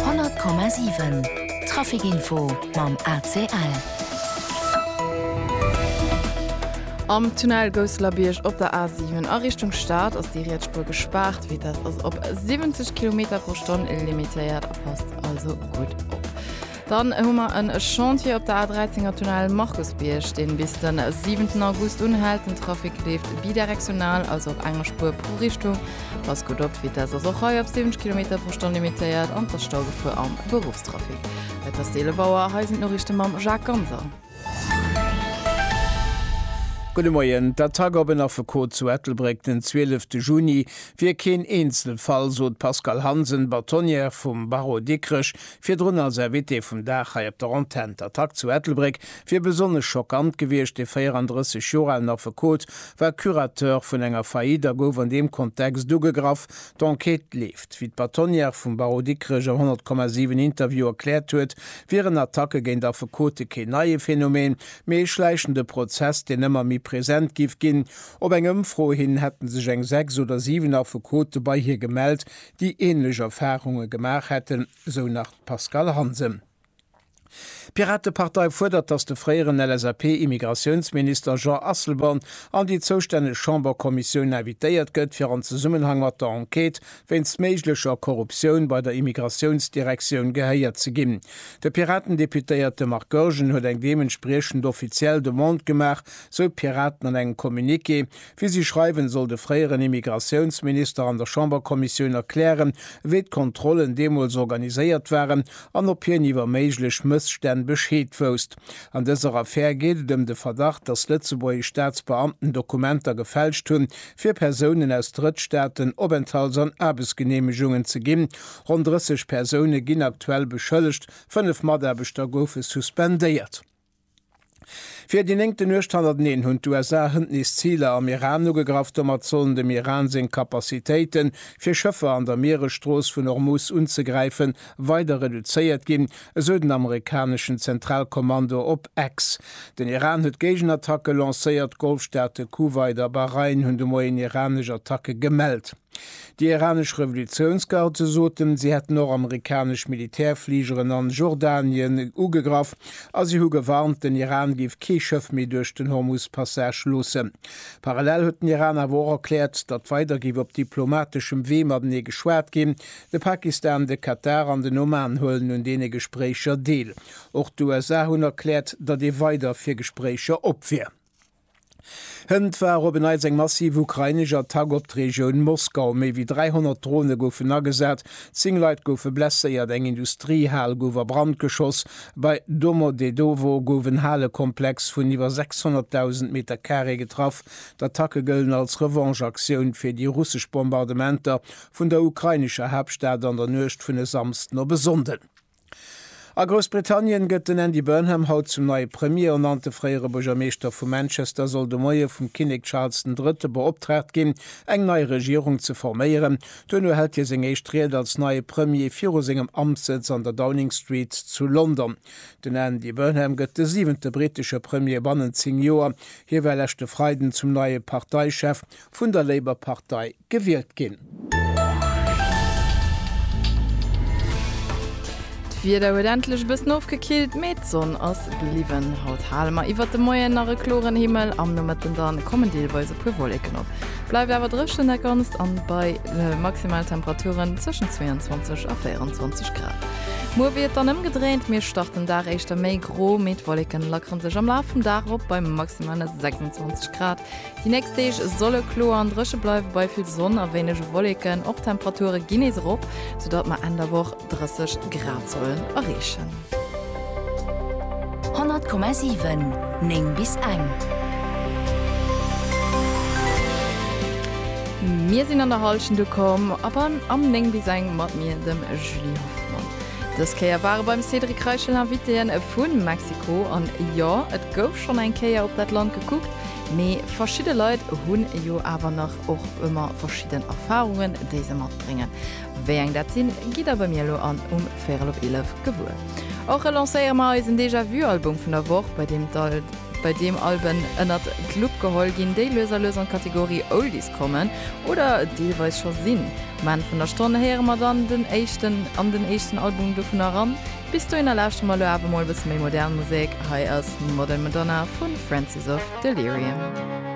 100,7 Trafic Info mam ACL. Am Tunnel Gousselerbiërg op der A7 a Richtung Stad ass déi riets Spuer gespaart. Vitess ass op 70 Kilometer pro Stonn limitéiert, passt also gutt op. Dann hu mer en Chantier op der A13 am Tunnel Markusbierg, deen bis den 7 August unhält. Den Trafic leeft bidirektional, also op enger Spuer pro Richtung. Passt gutt op, d'Vitesse ass och hei op 70 Kilometer pro Stonn limitéiert an t'ass Staugefuer am Beruffstrafic. Et ass 11 Auer, hei sinn d'Noriichten mam Jacques Ganser. Gudde Moien. D'Attack op en Affekot zu Ettelbréck den 12 de Juni wier keen Eenzelfall, sot d'Pascale Hansen, Bâtonnière vum Barreau Dikrech, Virdrun als Invité vum Dag hei op der Antenn. D'Attack zu Ettelbréck wier besonnesch schockant gewiescht. De 34 Joer alen Affekot war Curateur vun enger Faillite a gouf an deem Kontext ugegraff. D'Enquête leeft. Wéi d'Bâtonnière vum Barreau Dikrech am 100,7 Interview erkläert huet, wieren Attacke géint Affekote keen neie Phänomen, mee ee schläichende Prozess, deen ëmmer méi present giff ginn. Op eng Ëmfro hin hätte sech eng 6 oder 7 Affekote bei hir gemellt, déi änlech Erfarunge gemaach hätten, esou nach d'Pascale Hansen. D'Piratepartei fuerdert, datt de fréieren LSAP-Immigratiounsminister Jean Asselborn an déi zoustänneg Chamberkommissioun invitéiert gëtt, fir an Zesummenhang mat der Enquête wéinst méiglecher Korruptioun bei der Immigratiounsdirektioun gehéiert ze ginn. De Piratendeputéierte Marc Goergen huet eng deementspriechend offiziell Demande gemaach, sou d'Piraten an engem Communiqué. Wéi si schreiwen, soll de fréieren Immigratiounsminister an der Chamberkommissioun erklären, wéi d'Kontrollen deemools organiséiert waren an ob hien iwwer méiglech Mësstänn Bescheed wousst. An dëser Affär geet et ëm de Verdacht, datt lëtzebuergesch Staatsbeamten Dokumenter gefälscht hunn, fir Persounen aus Drëttstaaten Openthalts an Aarbechtsgeneemegungen ze ginn. Ronn 30 Persoune ginn aktuell beschëllegt, fënnef Mataarbechter goufe suspendéiert. Fir déi néngte Nuecht hannerteneen hunn d'USA hënt nees Ziler am Iran ugegraff. Domat sollen dem Iran seng Capacitéite fir Schëffer an der Mieresstrooss vun Hormuz unzegräife weider reduzéiert ginn, esou den amerikaneschen Zentralkommando op X. Den Iran huet Géigenattacke lancéiert, d'Golfstaate Kuwait a Bahrain hunn de Moien iranesch Attacke gemellt. Déi iranesch Revolutiounsgarde soten, si hätten nord-amerikanesch Militärfligeren a Jordanien ugegraff a si hu gewarnt, den Iran géif kee Schëff méi duerch den Hormuz-Passage loossen. Parallel huet den Iran awer och erkläert, datt weider géif op diplomateschem Wee matenee geschwat ginn. De Pakistan, de Katar an den Oman huelen un deene Gespréicher deel. Och d'USA hunn erkläert, datt ee weider fir Gespréicher op wier. Hënt war op en Neits eng massiv ukrainesch Attack op d'Regioun Moskau. Méi wéi 300 Drone goufen agesat, zéng Leit goufe blesséiert, eng Industriehal gouf a Brand geschoss. Bei Domodedowo gouf en Halekomplex vun iwwer 600.000 Meter Carré getraff. D'Attacke gëllen als Revanche-Aktioun fir déi russesch Bombardementer vun der ukrainescher Haaptstad an der Nuecht vun e Samsden op e Sonnden. A Groussbritannien gëtt den Andy Burnham haut zum neie Premier ernannt. De fréiere Buergermeeschter vu Manchester soll de Moie vum Kinnek Charles den Drëtte beoptraagt ginn, eng nei Regierung ze forméieren. Duerno hält hie seng éischt Ried als neie Premier viru sengem Amtssëtz an der Downing Street zu London. Den Andy Burnham gëtt de siwente brittesche Premier bannent 10 Joer. Hie war leschte Freiden zum neie Parteichef. vun der Labour Partei gewielt ginn. D'Wieder huet endlech e bëssen ofgekillt, mee d'Sonn ass bliwwen. Haut hale mer iwwert de Moien nach e kloren Himmel, am Nomëtten da kommen deelweis e puer Wolleken op. Bleift awer drëchen, dat Ganzt an bei Maximaltemperaturen zwëschen 22 a 24 Grad. Muer wier et dann ëmgedréint, mir starten den Dag éischter méi gro, mee d'Wolleken lackere sech am Laf vum Dag erop bei maximale 26 Grad. Déi nächst Deeg solle kloer an dréche bleiwen, bei vill Sonn a wéinege Wolleken. Och d'Temperature ginn nees erop, soudatt mer Enn der Woch 30 Grad sollen erreechen. 100,7 9 bis eng. Mir sinn an der Hallschent ukomm a beim am 9 bis eng mat mir, dem Julie Hoffmann. Dës Kéier ware beim Cédric Reichel Invitéen vu Mexiko. An jo, et gouf schonn eng Kéier op dat Land gekuckt. Mee verschidde Leit hunn jo awer nach och ëmmer verschidden Erfarungen, déi se matbréngen. Wéi eng dat sinn, gitt der bei mir elo an um véirel op eelef gewuer. Och relancéiere mer eisen Déjà Vu Album vun der Woch, bei deem bei deem Alben ënnert d'Lupp geholl ginn, déi lues a lues an d'Kategorie Oldies kommen oder deelweis scho sinn. Um Enn vun der Stonn héiere mer dann den éischten an den éischten Album dovunner eran. Bis dohinner lauschteren mer elo awer mol e bësse méi modern Musek. Hei ass Modern Madonna vu Francis of Delirium.